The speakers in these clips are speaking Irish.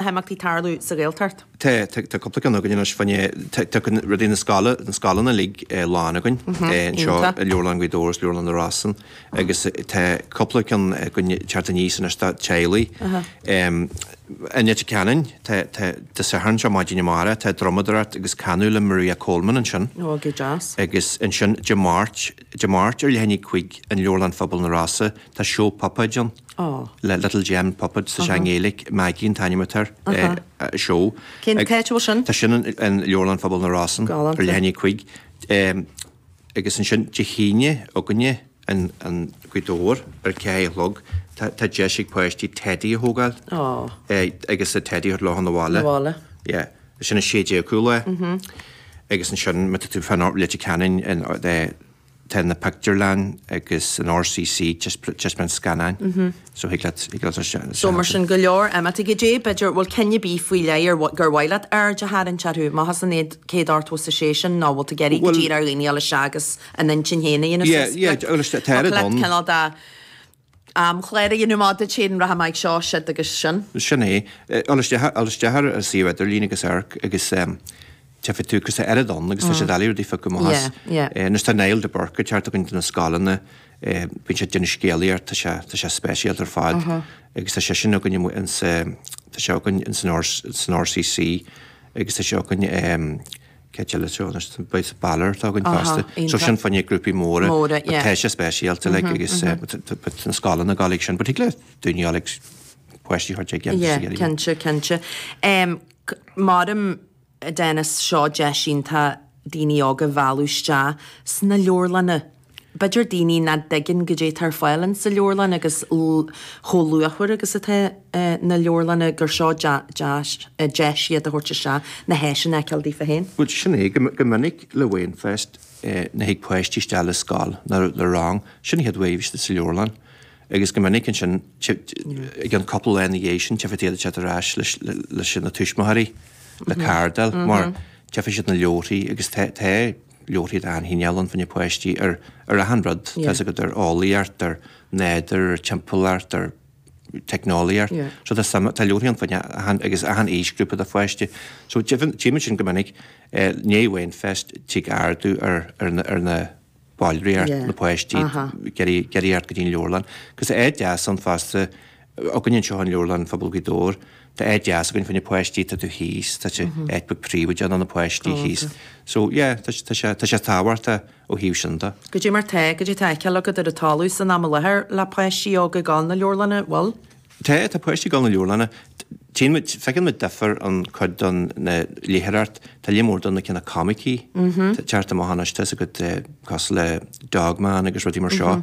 na himeachtaí tarlú sa Ghaeltacht. Tá cúpla ceann againn anois faoin aer. Tá rudaí na scoileanna uilig lán againn anseo i Leabharlann Ghaoth Dobhair agus Leabharlann na Rosann agus tá cúpla ceann againn ag teacht aníos anois do theaghlaigh. I Leitir Ceanainn, Dé Sathairn seo, maidin amárach, tá drumadóireacht agus canadh le Maria Coleman ansin. Ó, go deas. Agus ansin Dé Máirt, Dé Máirt ar leath i ndiaidh a cúig in Leabharlann Phobail na Rosa, tá seó puipéad ann. Aww. le Little Gem Puppets, tá sé i nGaeilic, Maggie an t-ainm atá ar an. Aha. seó. Cén Ag- áit a bhfuil sin? Tá sin in, in Leabharlann Phobail na Rosann. Galánta. Ar leath i ndiaidh a cúig. Em, agus ansin Dé hAoine againne in, in Gaoth Dobhair ar a ceathair a chlog, tá, tá deis ag páistí teidí a thógáil. Aww. Eh, agus an teidí a thabhairt leo na bhaile. Na bhaile. Yeah. Sin 16 cúl é. Agus ansin, má tá tú fá Leitir Ceanainn in, eh, Tá na pictiúrlann agus an RCC, ag taispeáint scannáin, so thig leat dul isteach ansin. So mar sin go leor imeachtaí. Goidé, b'fhéidir, bhfuil cinn ar bith faoi leith ar mhaith leat aird a tharraingt orthu, má thosaíonn iad céad ort fós is é sin nó bhfuil tú ag iarraidh go díreach ar dhaoine a ghabháil isteach agus a n-intinn féin a dhéanamh suas, cineál de. amchláir a dhéanamh má dtéann rath amach ag seo, siud agus sin. Sin é. Dul isteach, dul isteach ar an suíomh idirlín agus amharc agus tchífidh tú cúrsa eile ann agus tá siad eile rudaí faic go maith as. Anois tá Niall de Búrca ag teacht againn do na scoileanna, bíonn sé ag déanamh scéalaíocht, tá sé, tá sé speisialta ar fad agus tá sé sin againn amuigh ins, tá sé againn ins an RCC agus tá sé againn, Céad eile treo anois, beidh sa Balor atá againn fosta. So sin fá choinne grúpaí móra, but tá sé speisialta like agus but na scoileanna ag gabháil chuige sin, but thig le daoine dhá like páistí a thabhairt ag déanamh siar iad. Yeah, cinnte, cinnte. Creidim, Denis, seo deis iontach daoine óga a mhealladh isteach sna leabharlanna. b'fhéidir daoine nach dtuigeann goidé atá ar fáil ins sa leabharlann agus chomh luachmhar agus atá na leabharlanna gur seo deis iad a thabhairt isteach na háiseanna a fheiceáil daofa féin. Bhuel, sin é. Go minic le Wainfest nuair a thig páistí isteach le scoil nó le rang, sin an chéad uair istigh sa leabharlann agus go minic ansin i gceann cúpla lá ina dhiaidh sin tchífidh tú iad isteach ar ais leis na tuismitheoirí, le cárta a fháil mar tchífidh siad na leabharthaí agus tá, leabharthaí de achan chineál ann, fá choinne páistí, ar achan rud, tá's agat, ar eolaíocht, ar nádúr, ar timpeallacht, ar teicneolaíocht. So tá suim, tá leabharthaí ann fá choinne achan, agus achan aoisghrúpa de pháistí. So deimhin, tchímid sin go minic, i ndiaidh Wainfest, tig ardú ar, ar na, ar na ballraíocht, na páistí, ag iarraidh, ag iarraidh teacht go dtí an leabharlann. Agus tá sé deas ann fosta, againn anseo in Leabharlann Phobail Ghaoth Dobhair. Tá áit dheas againn fá choinne páistí atá taobh thíos, tá sé, áit beag príobhaideach ina bhfuil na páistí thíos. So, yeah, tá sé, tá sé tábhachtach ó thaobh sin de. Goidé mar tá, goidé tá á fheiceáil agat ar an talamh san am i láthair le páistí óga ag dul na leabharlainne, bhfuil? Tá, tá páistí ag dul na leabharlainne. Tchíonn muid, feiceann muid difear an cuid den léitheoireacht, tá líon mór de na cineál comicí atá ag teacht amach anois, tá fhios agat, cosúil le Dog Man agus rudaí mar seo.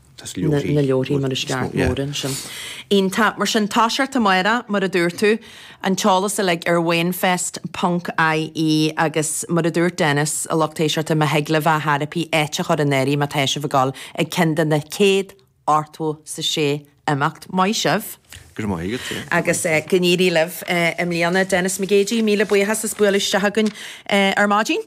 na leabharthaí mar is ceart, mór ansin. Iontach. Mar sin, tá sé ar tí Máire, mar a dúirt tú, an t-eolas uilig ar Wainfest ponc IE agus mar a dúirt Dennis, a lucht éisteachta, má thig libh ar chor ar bith áit a chur in áirithe má tá sibh ag dul ag ceann de na chéad ochtó is a sé imeacht. Maith sibh. Go raibh maith agat, yeah. Agus go n-éirí libh i mbliana. Dennis McGeady, míle buíochas as bualadh isteach againn ar maidin.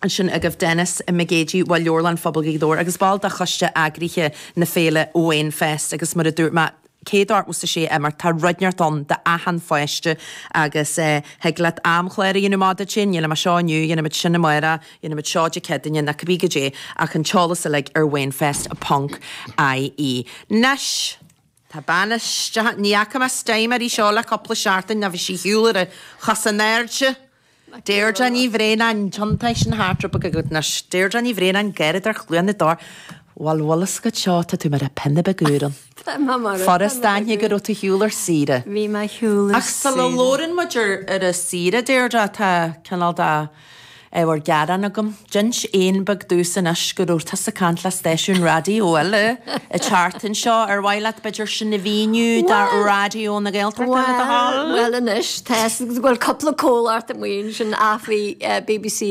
ansin agaibh Dennis McGeady ó Leabharlann Phobail Ghaoth Dobhair agus ball de choiste eagraithe na féile Wainfest agus mar a dúirt mé céad ochtó is a sé imeacht tá rud inteacht ann do achan pháiste agus thig leat amchlár a dhéanamh amach duit féin dhéanfaidh muid seo inniu dhéanfaidh muid sin amárach dhéanfaidh muid seo Dé Céadaoine ná cibé goidé ach an t-eolas uilig ar wainfest ponc ie. Anois! Tá bean isteach, ní fhaca mé sa tseomra seo le cúpla seachtain, nó bhí sí ar shiúl ar cosa in airde. Deirdre Ní Bhraonáin, Deontais na hArdrúipe go Anois. Deirdre Ní Bhraonáin, garraíodóir Chluain na dTor, Bhuel bhfuil a fhios agat seo, tá tú mar phingin bheag úr ann. Furast aithne go raibh tú ar shiúl ar saoire. Bhí mé ar shiúl ar saoire. Ach sula labhrann muid ar an tsaoire, Deirdre, tá cineál de. Ábhar gearáin agam. D'inis éan beag domhsa anois go raibh tusa ag caint le stáisiún raidió eile an tseachtain seo. Ar mhaith leat b'fhéidir sin a mhíniú do Raidió na Gaeltachta le do thoil? Bhuel anois, tá, bhuel cúpla comhlacht amuigh ansin, ach bhí bbc